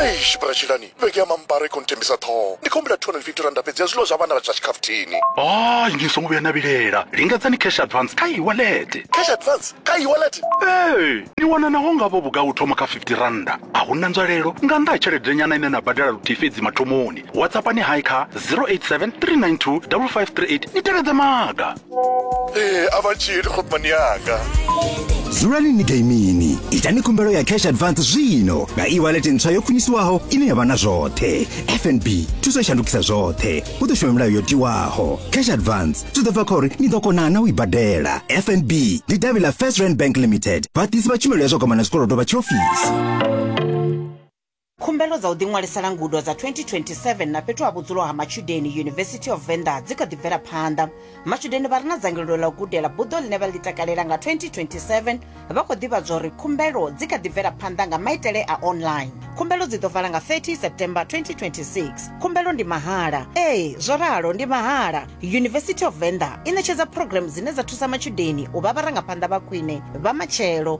eish bratshilani vhege ya mambara i khou nthembisa ṱhoho ndi khou humbula 250 randa fhedzi ya zwiḽiwa zwa vhana vha zwa tshikhafuthini hayi ni songo vhuya na vhilela lingedzani cash advance kha iwalete cash advance kha iwalete ee ni wana naho ngavho vhugai u thoma kha 50 randa a hu na nzwalelo nga nnḓa ha tshelede nyana ine na badela luthihi fhedzi mathomoni whatsappani hai kha 087 392 5538 ni tevhedze maga ee a vha tshili khopmani yanga dzulani ni gaimini itani khumbelo ya cash advance zwino nga e-wallet ntswa yo khwiniswaho ine ya vha na zwoṱhe fnb thuso i shandukisa zwoṱhe u ḓo shuma milayo yo tiwaho cash advance zwi ḓo bva kha uri ni ḓo kona na u i badela fnb ndi davhi ḽa first rand bank limited vhaḓisi vha tshumelo ya zwa kwamana zwikolodo vha tshiofisi Khumbelo dza u ḓiṅwalisela ngudo dza 2027 na fhethu ha vhudzulo ha matshudeni University of Venda dzi kha ḓi bvela phanḓa. Matshudeni vha re na dzangalelo ḽa u gudela buḓo ḽine vha ḽi takalela nga 2027 vha khou ḓivhadzwa uri khumbelo dzi kha ḓi bvela phanḓa nga maitele a online. Khumbelo dzi ḓo vala nga 30 September 2026. Khumbelo ndi mahala. Ee, zwo ralo ndi mahala. University of Venda i ṋetshedza phurogiremu dzine dza thusa matshudeni u vha vharangaphanḓa vha khwine vha matshelo.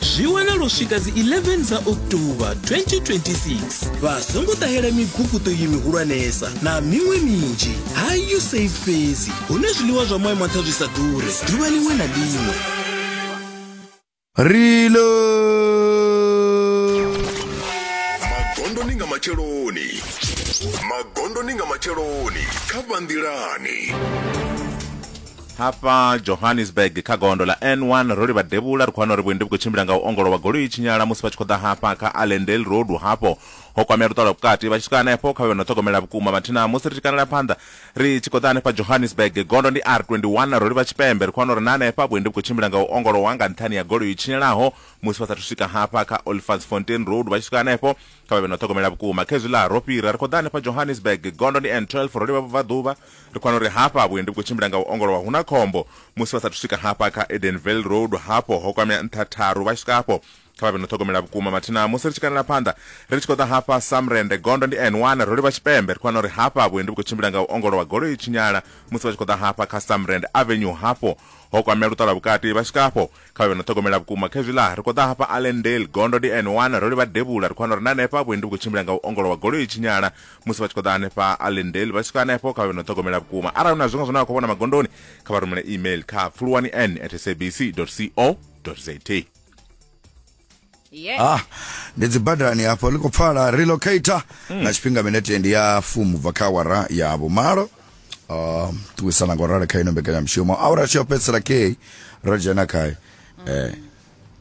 zwi wanala u swika dzi 11 dza october 2026 vha songo ṱahela miguguṱo iyi mihulwanesa na miṅwe minzhi hayu safe fhedzi hune zwiḽiwa zwa moya maṱha zwi sa ḓure ḓuvha liṅwe na liṅwe Rilo. magondoni nga matsheloni magondoni nga matsheloni kha vhanḓilani Hafha Johannesburg kha gondo ḽa N1 ro livha devhula ri khou wana uri vhuendi vhu khou tshimbila nga u ongolowa goloi i tshinyala musi vha tshi khou ḓa hafha kha Allendale Road hafho ho kwamea luṱa lwa vhukati vha tshi swika hanefho kha vhe no ṱhogomela vhukuma mathina musi ri tshi kanela phanḓa ri tshi khou ḓa hanefha Johannesburg gondo ndi R21 ro livha tshipembe ri khou wana uri na hanefha vhuendi vhu khou tshimbila nga u ongolowa nga nṱhani ya goloi i tshinyalaho musi vha sathu swika hafha kha Olifantsfontein Road vha tshi swika hanefho kha vha vhe no ṱhogomela vhukuma khezwiḽa ro fhira ri khou ḓa hanefha Johannesburg gondo ndi N12 ro livha vhubvaḓuvha Ri kwana uri hafha vhuendi vhu khou tshimbila nga u ongolowa hu na khombo. Musi vha sa athu swika hafha kha Edenvale Road, hafho ho kwamea nṱha tharu. Vha tshi swika hafho, kha vha vhe no ṱhogomela vhukuma. Mathina musi ri tshi kanela phanḓa, ri tshi khou ḓa hafha Samrende, gondo ndi N one, ro livha tshipembe. Ri kwana uri hafha vhuendi vhu khou tshimbila nga u ongolowa, goloi i tshinyala musi vha tshi khou ḓa hafha kha Samrende Avenue. Hafho ho kwamea luṱa lwa vhukati. Vha tshi swika hafho, kha vhe no ṱhogomela vhukuma khezwi ḽa ri khou ḓa hafha allendale gondo ndi n1 ro livha devhula ri khou wana uri na hanefha vhuendi vhu khou tshimbila nga u ongolowa goloi i tshinyala musi vha tshi khou ḓa hanefha allendale vha swika hanefho kha vhe no ṱhogomela vhukuma arali hu na zwiṅwe zwine vha khou vhona magondoni kha vha rumele email kha pfuluwani n at sabc co za yeah. ah ndi dzibadani hafho ḽi khou pfala relocator mm. na tshifhinga minete ndi ya fumu bva kha awara ya vhumalo um ṱuwisana nga u rali kha ino mbekanyamushumo awara tshi yo fhedzisela kei ro dzhena khayo eh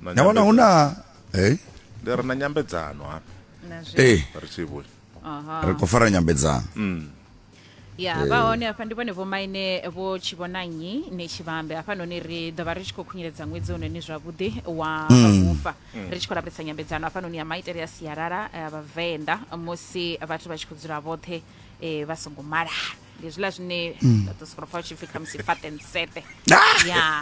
na vhona hu na hey ndi ri na nyambedzano hafha ee eh. ri tshi vhuya ri khou fara nyambedzano mm. ya Eh. vha hone hafha ndi vhone vhomaine vho tshivhonanyi ni tshivhambe hafhanoni ri ḓo vha ri tshi khou khunyeledza ṅwedzi ononi zwavhuḓi wa Mm. vhufa Mm. ri tshi khou lavhelesa nyambedzano hafhanoni ya maitele a sialala a vhavenḓa musi vhathu vha tshi khou dzula vhoṱhe eh, vha songo malana ndi zwiḽa zwine Mm. vha ḓo sokou pfa vha tshi pfi khamusi fatensete ya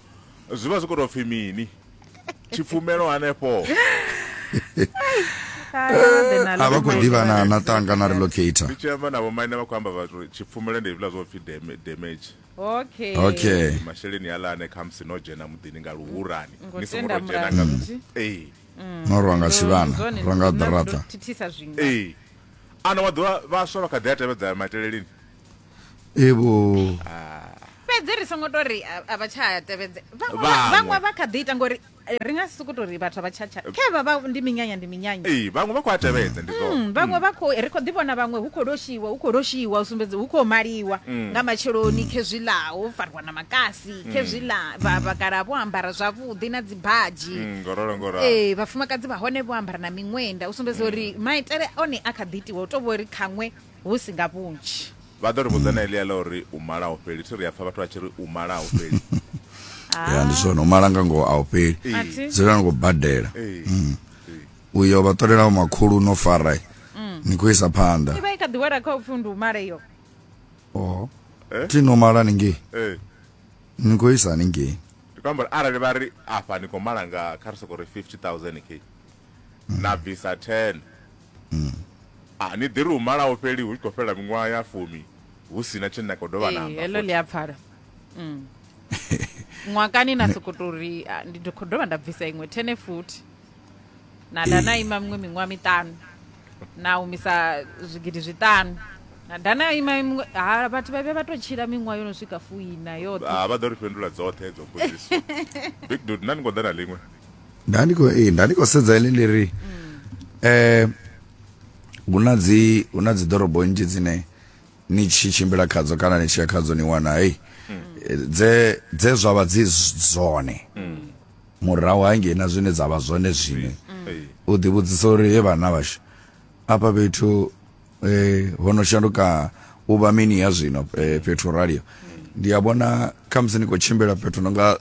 zwi vha zwi khou tou pfhi mini tshipfumelo hanefho a vha khou ḓivha na na tanga na relocator ndi tshi amba na vhomaine vha khou amba vhathu uri tshipfumelo ndi hezwiḽa zwo pfhi dam- damage okay okay masheleni aḽa ane khamusi no dzhena muḓini nga luhurani Ngo ni songo tenda tou dzhena nga mulamuti. ee no rwa nga tshivhana Zwone, rwa nga na ḓirata ndo thithisa zwiṅwe ee ana wa ḓuvha vhaswa vha kha ḓi a tevhedza maitele lini evo fhedzi ri songo to ri a a vha tsha tevhedze Vhaṅwe. vhaṅwe vha kha ḓi ita ngori eh, ri nga si sokou tou ri vhathu a vha tshatsha khevha vha ndi minyanya ndi minyanya ee vhaṅwe vha khou a tevhedza ndi zwone Mm, vhaṅwe vha khou ri khou ḓi vhona vhaṅwe hu khou loshiwa hu khou loshiwa u sumbedza hu khou maliwa Mm. nga matsheloni khezwi ḽa ho fariwa na makasi Mm. khezwi ḽa vha- vhakalaha vho ambara zwavhuḓi na dzibadzhi Mm, ngorolo ngoralo ee vhafumakadzi vha hone vho ambara na miṅwenda u sumbedza uri maitele one a kha ḓi itiwa u to vho ri khaṅwe hu si nga vhunzhi. Vha ḓo ri vhudza na eḽia ḽa uri u mala a u fheli. Thi ri a pfa vhathu vha tshi ri u mala a u fheli. ya ndi zwone u mala nga ngoho a u fheli A thi. dzula ni khou badela Ee. Mm. uyo vha ṱolelaho makhulu no fara ni khou isa phanḓa Ivha i kha ḓi wela kha upfi ndi u mala iyo. Oh. Eh? thi no mala ningei Eh. ni khou isa ningei Ndi khou amba uri arali vha ri afha ni khou mala nga kha ri soko ri 50000 k. Na bvisa 10. a ni ḓi ri hu malaho fheli hu tshi khou fhela miṅwaha ya fumi hu si na tshine na khou dovha namba heḽo ḽi a pfala mm. ṅwakani na soko to ri ndi khou dovha nda bvisa iṅwe thene futhi na da na ima miṅwe miṅwaha miṱanu na humisa zwigidi zwiṱanu na da na ima miṅwe ha vhathu vha vhe vha tou tshila miṅwaha yo no swika fuina yoṱhe vha ḓo ri fhindula dzoṱhe dzo mbudziso big dud na ni khou ḓa na ḽiṅwe nda ndi khou ee nda ndi khou sedza ile ndi ri eh hu na dzi hu na dzi ḓorobo nnzhi dzine ni tshi tshimbila khadzo kana ni tshi ya khadzo ni wana hei eh, dze dze zwa vha dzi z- zwone murahu hangei na zwine dza vha zwone zwine Hey. u ḓivhudzisa uri he vhana vhashu afha fhethu eh, ho no shanduka u vha mini ya zwino eh, fhethu ralio ndi a vhona khamusi ni khou tshimbila fhethu no nga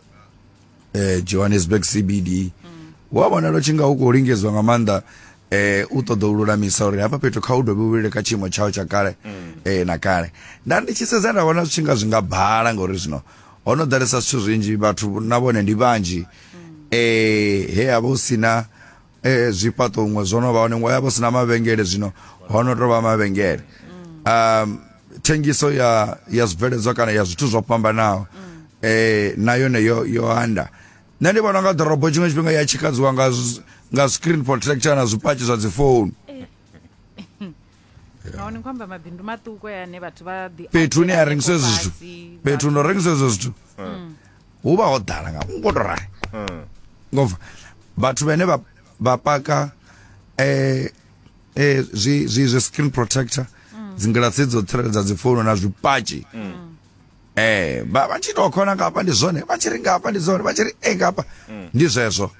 eh, johannesburg cbd mm. wa vhonala u tshi nga u khou lingedzwa nga maanḓa eh u ṱoḓa u lulamisa uri hafha fhethu kha u dovhe u vhile kha tshiimo tshao tsha kale mm. eh na kale nda ndi tshi sedza nda vhona zwi tshi nga zwi nga bhala ngauri zwino ho no ḓalesa zwithu zwinzhi vhathu na vhone ndi vhanzhi mm. eh he a vha u si na eh, zwifhaṱo huṅwe zwo no vha hone ngo ya vho sina mavhengele zwino ho no tou vha mavhengele um thengiso ya ya zwibveledzwa kana ya zwithu zwo fhambanaho eh na yone yo yo anda nṋe ndi vhona nga ḓorobo tshiṅwe tshifhinga ya tshikadziwa nga zwi- nga screen protector na zwipatshi zwa dzi phone nahone ni khou amba mabindu maṱuku aya ane vhathu vha ḓi fhethu hune ha rengiswa ezwo zwithu fhethu ndo rengiswa ezwo zwithu mm. hu vha ho ḓala nga ngo to rali mm. ngova vhathu vhane vha vha paka eh eh zwi zwi zwi screen protector mm. dzingilasi dzo tsireledza dzi founu na zwipatshi eh vha vha tshi to khona ngafha ndi zwone vha tshi ri ngafha ndi zwone vha tshi ri e ngafha ndi zwezwo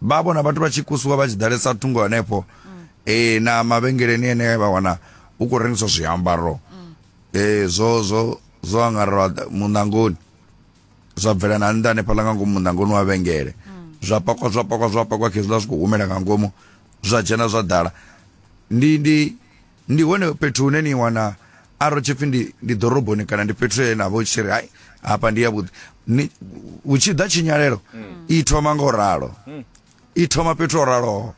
vha vhona vhathu vha tshi kusiwa vha tshi ḓalesa thungo hanefho mm. eh na mavhengeleni ene vha wana u khou rengiswa zwiambaro mm. eh zwo zwo zwo angarelwa munangoni zwa bvela na nnḓa hanefhaḽa nga ngomu munangoni wa vhengele mm. zwa pakwa zwa pakwa zwa pakwa khezwiḽa zwi khou humela nga ngomu zwa dzhena zwa ḓala ndi ndi Ndi hone fhethu hune ni wana arali tshipfi ndi ndi ḓoroboni kana ndi fhethu he na vho tshi ri hai hafha ndi ya vhuḓi ni hu tshi ḓa tshinyalelo i thoma nga u ralo i thoma fhethu ho raloho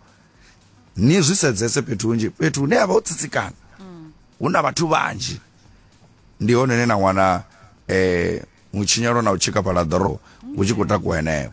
ni zwi sedzese fhethu hunzhi fhethu hune havha ho tsitsikana hu na vhathu vhanzhi ndi hone hune na wana eh mutshinyalo na u tshikafhala ḓorobo hu tshi khou takuwa henefho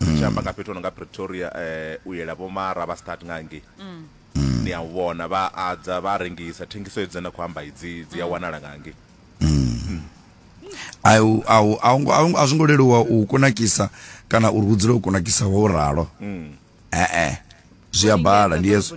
mm. tshi amba nga fhethu ono nga pretoria um u yela vho mara vha start nga ngei mm. mm. ni a u vhona vha adza vha rengisa thengiso edzi na khou amba idzi dzi a mm. wanala nga ngei mm. a zwo ngo leluwa u kunakisa kana uri hu dzule u kunakisa wa u ralo ee zwi a bala ndi yeso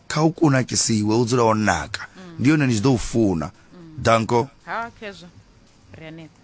Kha u kunakisiwe, u dzule wo naka, ndi hone ni tshi ḓo u funa. Danko. Ha, Khezwa, ri hanefha.